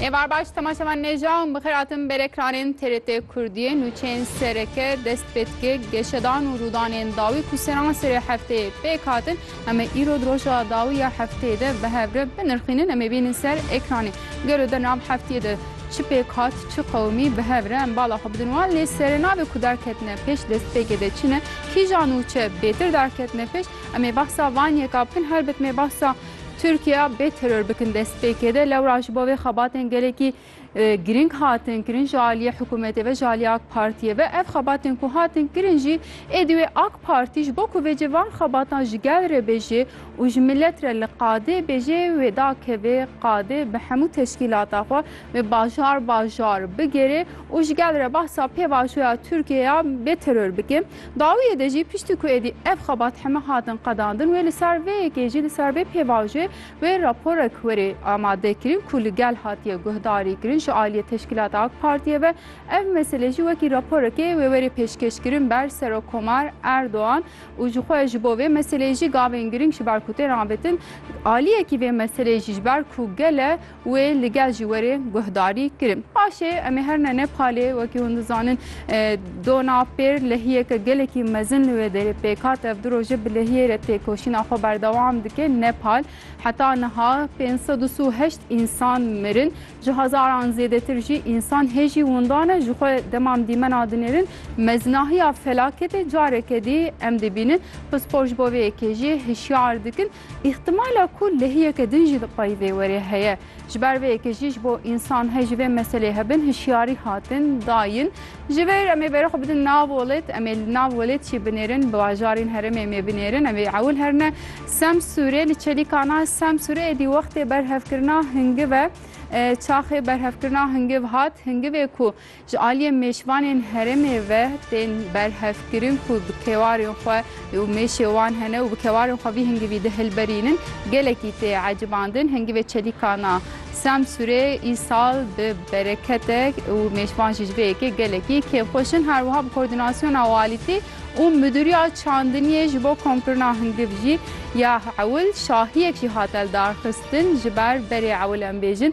Êvar baş temaşevan nêja û bixir atim berekranên TRT Kurdiyê nûçeyên sereke dest pê dike geşedan û rûdanên dawî ku seran serê hefteyê pêk hatin em ê îro di roja dawî ya hefteyê de bi hev re binirxînin em ê bînin ser ekranê gelo di nav heftiyê de çi pêk hat çi qewimî bi hev re em bala xwe bidin wan lê serê navê ku derketine pêş destpêkê de çi ne kîjan û çi bêtir derketine pêş em ê behsa van yeka bikin helbet mê behsa Tirkiya bê teror bikin destpêkê de lewra ji bo vê xebatên gelekî girîng hatin kirin ji aliyê hikûmetê ve ji aliyê AK Partiyê ve ev xebatên ku hatin kirin jî êdî wê AK Partî ji bo ku vê cî van xebatan ji gel re bêjê û ji milet re li qadê bêjê wê dakevê qadê bi hemû teşkîlata xwe wê bajar bajar bigêrê û ji gel re behsa pêvajoya Tirkiye ya bê teror bike. Dawiyê de jî piştî ku êdî ev xebat heme hatin qedandin wê li ser vê yekê jî li ser vê pêvajoyê wê raporek werê amadekirin ku li gel hatiye guhdarîkirin ji aliyê teşkîlata ak partiyê ve ev mesele jî wekî raporekê wê werê pêşkêşkirin ber serokkomar Erdogan û jixwe ji bo vê meseleyê jî gavên giring ji ber ku tên avêtin aliyekî vê meseleyê jî ji ber ku gele Wê li gel jî werê guhdarî kirin. Paşê em ê her ne nepxalê wekî hûn dizanin dona pêr lehiyeke gelekî mezin li wê derê pêk hat. Ev du roj e bi lehiyê re têkoşîna xwe berdewam dike. Nepal heta niha pênc sed û si û heşt însan mirin. Ji hezaran zêdetir jî însan hêjî windan e. Ji xwe dema em dîmena dinêrin mezinahiya felaketê careke dî em dibînin. Pispor ji bo vê yekê jî hişyar dikin. Îhtimala ku lehiyeke din jî di pey vê werê heye. Ji ber vê yekê jî ji bo însan hê ji vê meselê hebin hişyarî hatin dayin. Ji vir em ê berê xwe bidin nav welêt, em ê li nav welêt jî binêrin, bi bajarên herêmê em ê binêrin, em ê ewil herine Semsûrê, li çelîkana Semsûrê êdî wextê berhevkirina hingiv e, çaxê berhevkirina hingiv hat, hingivê ku Ji aliyê mêşvanên herêmê ve tên berhevkirin ku bi kewarên xwe û mêşê wan hene û bi kewarên xwe vî hingivî dihilberînin, gelekî tê ecibandin. Hingivê Çelîkan a Semsûrê îsal bi bereketek û mêşvan jî ji vê yekê gelekî kêfxweş in. Her wiha bi koordînasyona walîtî û midûriya çandiniyê ji bo komkirina hingiv jî ya ewil şahiyek jî hate lidarxistin. Ji ber berê ewil em bêjin,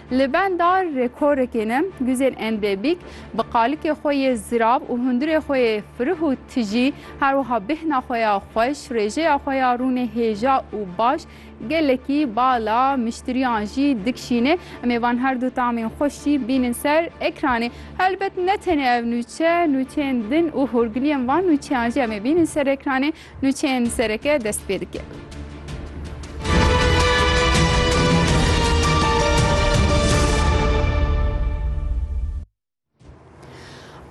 Li benda rekorekê ne, Guzên Endebîk bi qalikê xwe yê zirav û hundirê xwe yê firih û tijî, her wiha bêhna xwe ya xweş, rêjeya xwe ya rûnê hêja û baş gelekî bala miştiriyan jî dikşîne. Em ê van herdu tamên xweş jî bînin ser ekranê. Helbet ne tenê ev nûçe, nûçeyên din û hûrgiliyên van nûçeyan jî em ê bînin ser ekranê. Nûçeyên sereke dest pê dike.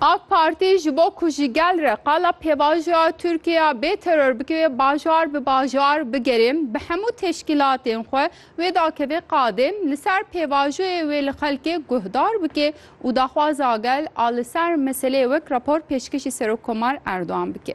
AK Parti ji bo ku ji gel re qala pêvajoya Tirkiye bê teror bike bajar bi bajar bigere bi hemû teşkîlatên xwe wê dakeve qadê li ser pêvajoyê wê li xelkê guhdar bike û daxwaza gel a li ser meseleyê wek rapor pêşkêşî Serokkomar Erdogan bike.